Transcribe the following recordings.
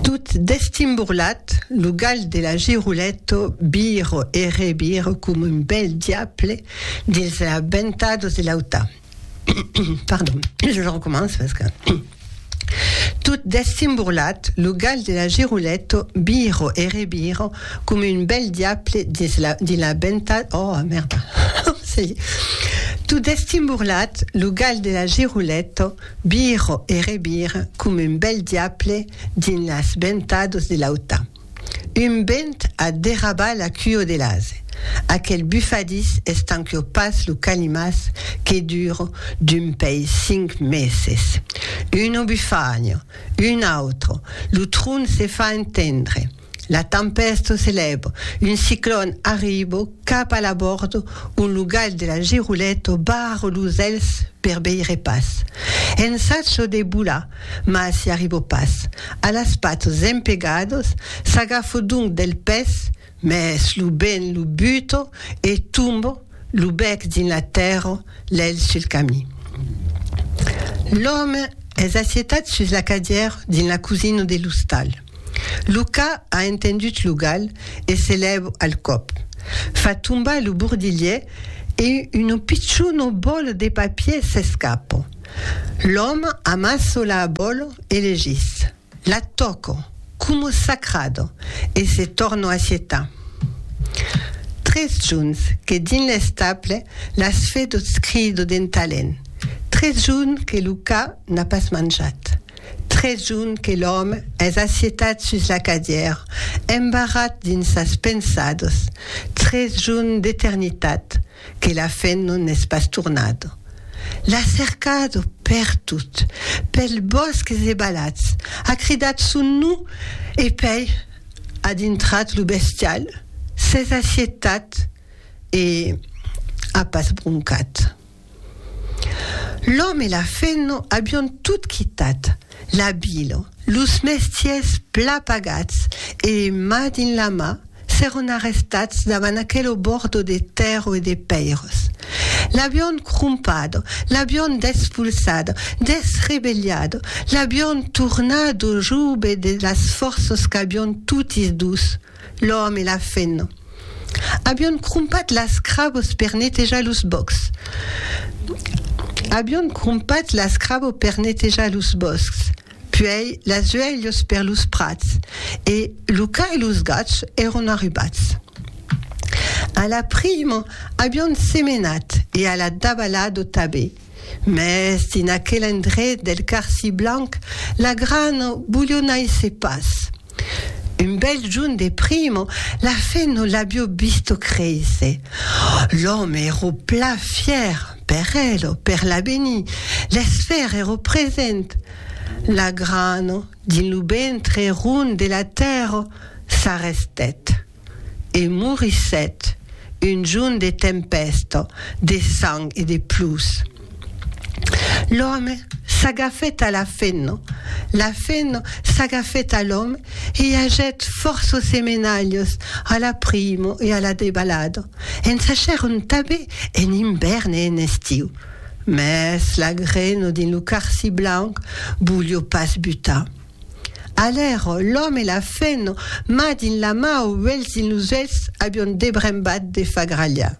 Tot destimborlat, lo gal de la Giruletto viro e reviro coma un bèl diable dins la ventadus de l'auta. Pardon, je recomenço parce que. Tot destimborlat, lo gal de la Giruletto viro e reviro coma un bèl diable dins la, dins la venta... Oh, merda! Ça y est. Tot destimborlat, lo gal de la Giruletto Viro e revire coma un bèl diable dins las ventados de l'auta. Un vent a derrabat la cuo de l'ase. Aquel bufadís estanquio pas lo calimàs que duro d'un pei cinc meses. Uno bufagno, un autro, lo tron se fa entendre. La tempèsto se lèvo, un ciclòn arribo cap a l'abòrdo ont lo gal de la Girolèto barro los elhs per veire pas. Ensatjo de bolar, mas i arribo pas. A las patos zempegados, s'agafo donc del pès, mès lo bent lo buto e tombo, lo bèc dins la tèrra, l'elh sul camin. L'òme es assetat sus la cadièra dins la cosina de l'ostal. Luca a entendut lo gal e se lèu al còp. Fa tombar lo bordilhèr e uno pichon bòlo de papier s'escapa. L'òme amassa la bòlo e legís, la tòca, coma sacrada, e se torna assetar. Tres juns que dins l'estable las fedots crida d'entalent, tres juns que Luca n'a pas manjat. Trejun que l'òme es assietat sus la cadièr, embarrat dins sas pensados, trejun d'eternitat que la fen non n'es pas tornado. L'a cercado pertot, pels bòsques e balats, a cridat son non e pèi a dintrat lo bestial, s'es assietat e a pas broncat. L'òme e la feno avion tot quitat la vila, los mestiers pla pagats e, ma dins la ma, s'èron arrestats davant aquel obordo de tèrro e de pèiras. L'avion crompat, l'avion despolsat, desrebelhat, l'avion tornat au joube de las fòrças qu'avion totis dus. L'òme e la fena avion crompat las crabos per netejar los bòscs. Avion crompat las crabos per netejar los bòscs, puèi las uelhos per los prats, e lo ca e los gats èron arribats. A la primo avion semenat e a la dabalado tabé. Mès dins aquel endret del Carsi Blanc, la gran bulhonaisse pas. Un bèl junh de primo, la fe non l'abio visto créisser. L'òme ero plan fièr, per el o per l'avenir, l'esfèr ero present. La gran, dins lo ventre rond de la tèrra, s'arrestèt. E morissèt un jorn de tempèsta, de sang e de plús. L'òme s'agafèt a la fenna, la fenna s'agafèt a l'òme e i ajèt fòrça semenalhas a la prima e a la debalada. En sachèron tanben en ivèrn e en estiu. Mès la grena dins lo carci blanc volió pas butar. Alèro, l'òme e la fèno, ma dins la mau, uelhs dins los uelhs, avion debrembat de fagralhar.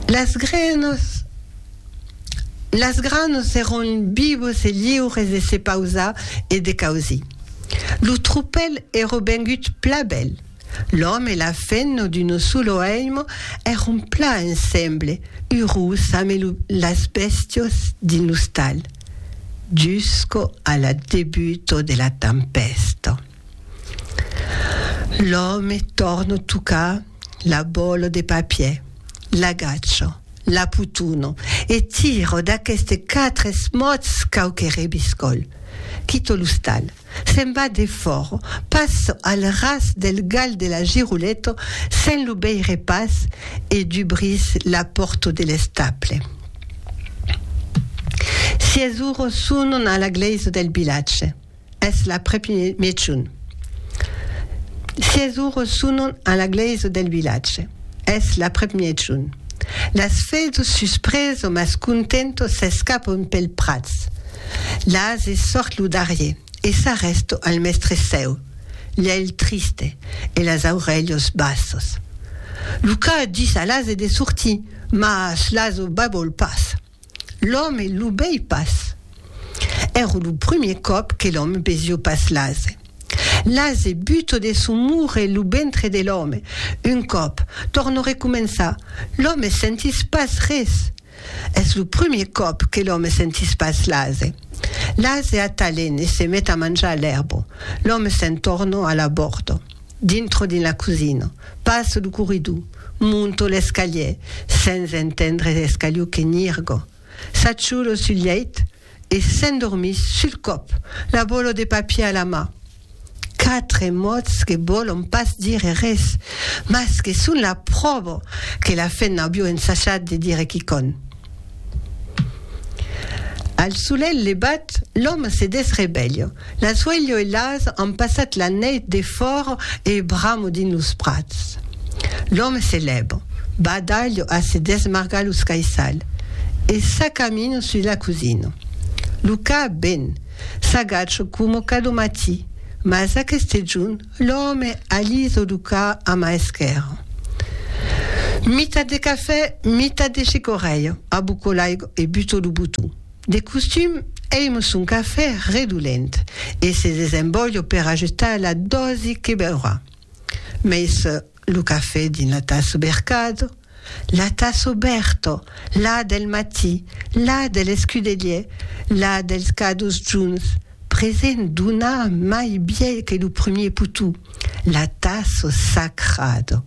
Las grenos, las granos èron vivos e liures de se pausar e de causir. Lo tropèl èro vengut pla bèl. L'òme e la femna d'uno sulo èimo èron plan ensemble, urós ame lo las bèstios dins l'ostal, jusco a la debuto de la tempèsta. L'òme tòrno tocar la bòlo de papier, l'agachò, la putono e tiro d'aqueste quatre esmòts quauque rebiscòl, quito l'ostal. se'n va defòrt, pas al ras del gal de la Girouleto, se'n lo veire pas, e dubrís la pòrto de l'estable. Sies uro sonon a la glèisa del vilatge. Es l'aprèp mejun. Sies uro sonon a la glèisa del vilatge. Es la premiejon. Las vedo sus preso mas contento s'escapon pel prats. Las e sort lo darrier e s'arresto al mestre seu, l'elh triste e las aurelhos bassos. Lo ca dis a las e de sortir, mas las o babol pas. L'òme lo bèi pas. Ère lo primier còp que l'òme besió pas l'ase. L'ase buto de son mure lo ventre de l'òme. Un còp, tòrno recomençar, l'òme sentís pas res. Es lo primier còp que l'òme sentís pas l'ase. L'ase atalène se met a manjar l'èrbo. L'òme se'n tòrno a l'abòrdo. Dintro dins la cosina. Passo lo corridor. Monto l'escalier, sens entendre l'escalió que nirgo. S'aciolo sul lheit e s'endormís sul còp, la bolo de papier a la mà. Quatre mots que vòlon pas dire res, mas que son la pròva que la femna avió ensajat de dire quicònh. Al solelh levat, l'òme se desrevelha. L'asuelho e l'as an passat la nèit defòra e bramo dins los prats. L'òme se lèva, va dalh a se desmargar los caissals e s'acamina sus la cosina. Lo cap ben, s'agacha coma cada matí, mas aqueste jorn L'òme alís o ducà a ma esquèrra. Mitat de cafè, mitat de chicorrèia, abuco l'aigo e buto lo botó. De costum, èimo son cafè redolent e se desembòlho per ajustar la dòsi que beurà. Mei sò lo cafè dins la tassa bercada. La tàs obèrto, la del matí, la de l'escudelier, la dels cadus junts, present d'una mai biais que lo premier potou, la tàs sacrado.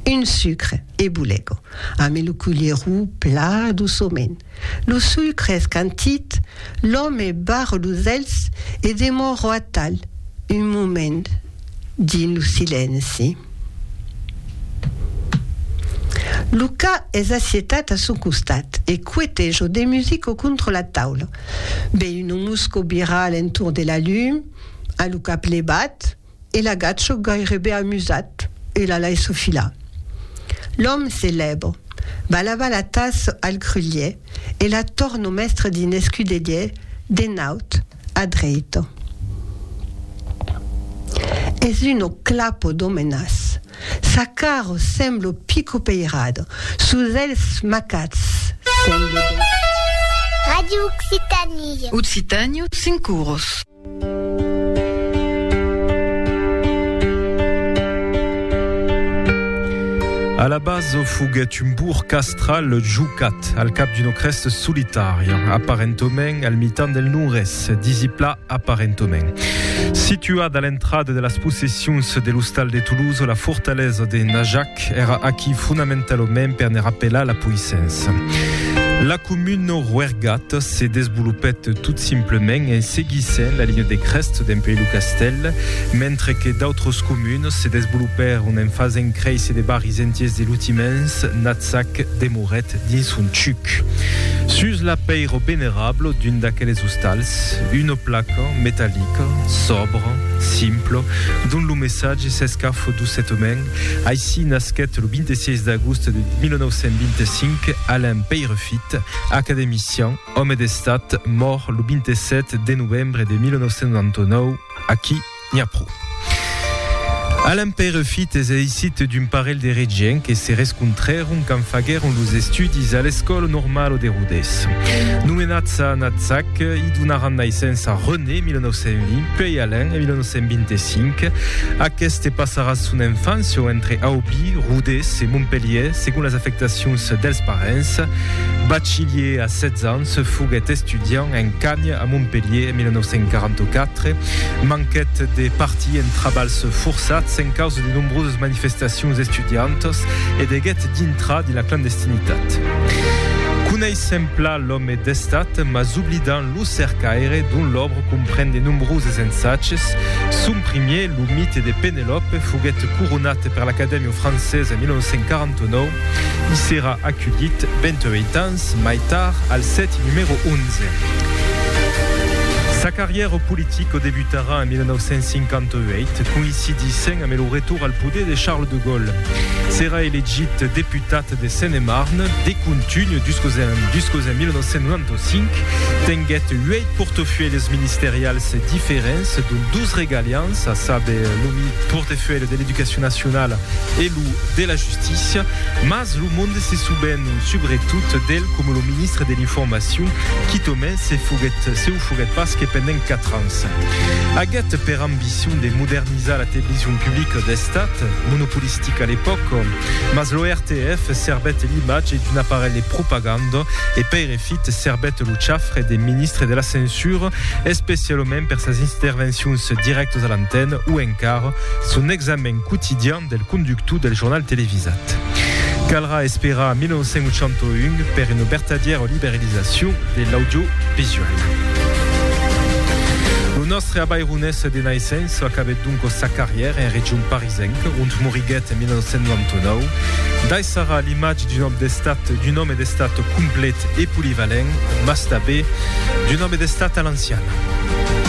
Un sucre e bulego, ame lo culierou pla douçoment. Lo sucre escantit, l'òme barre los elhs e demòro atal un moment. dins lo silenci. Luca es assietat a son costat e cuete jo de musico contra la taula. Be uno musco bira a l'entorn de la lum, a lo cap levat, e l'agacho gairebe amusat e la laisso filar. L'òm se lèva, va lavar la tassa al grulhièr e la torno mestre dins l'escudelièr de naut. a dreito. Es uno clapo d'omenas. Sa caro semblo pico peirado, sus els macats semblo dèit. Radio Occitanie. Occitània, cinc uros. A la base foguèt un bourg castral jucat. al cap d'una crèsta solitària, aparentament al mitan del non-res, disipla aparentament. Situada a l'entrada de las possessions de l'ostal de Toulouse, la fortalesa de Najac èra aquí fonamentalament per ne rapelar la poissença. La comuna Roergat se desvolopèt tot simplement en seguissent la linha de crèst dempuèi lo castèl, mentre que d'autras comunas se desvolopèron en fasent créisser de barris entiers de lutiments, Natzac, Demorèc. Auret dins son chuc, sus l'apeiro venerablo d'un d'aqueles ostals, una placa metallica, sòbra, simpla, dont lo messatge s'escafo doçetament, Aicí nasquèt lo 26 d'agost de 1925 Alain Peyrefit, academician, òme d'Estat, mòrt lo 27 de novembre de 1999 aquí, N'i a pro. A l'Empèire fit es aisit d'un parelh de regients que se rescontrèron quand faguèron los estudis a l'Escòla Normala de Rodés. Nomenats a Natzac, i donaràn naissença René, 1920, puèi Alain, en 1925. Aqueste passarà son enfància entre Aubí, Rodés e Montpelhièr, segon las afectacions dels parents. Bachilièr a 16 ans, Se foguèt estudiant en Cagnes a Montpelhier en 1944. Manquèt de partir en trabalhs forçats en causa de nombroses manifestacions estudiantas e deguèt dintrar dins la clandestinitat. Coneissèm pla l'òme d'estat, mas oblidam lo cercaire, dont l'òbra compren de nombroses ensatges. Son primier, Lo mite de Penelòpe, foguèt coronat per l'Acadèmia francesa en 1949. I serà aculhit, 28 ans, ans mai tard al sèti numèro 11. Sa carrièra politica debutarà en 1958, coïncidissent amé lo retorn al poder de Charles de Gaulle. Serà elegit deputat de Seine-et-Marne de contunh jusqu'au en 1995. Tenguèt uèit portafuèlhs ministerials diferents, dont dos regalians, a saber lo portafuèlh de l'Educacion nacionala e lo de la justícia, mas lo monde se souvén subretot d'el coma lo ministre de l'Informacion, quitomai se foguèt, se o foguèt pas que pendent 4 ans. Aguèt per ambicion de modernizar la television publica d'Estat, monopolistica a l'epòca, mas lo RTF servèt l'imatge d'un aparelh de propaganda e Peirefit servèt lo chafre de ministre de la censura, especialament per sas intervencions dirèctas a l'antena o encara son examen quotidian del conductor del jornal televisat. Calrà esperar a 1981 per una vertadièra liberalizacion de l'audiovisual. Lo nòstre abaironés de naissença acabèt doncas sa carrièra en region parisenca, ont moriguèt en 1999. Daissarà l'imatge d'un òme d'estat, d'un òme d'estat complet e polivalent, mas tanben d'un òme d'estat a l'anciana.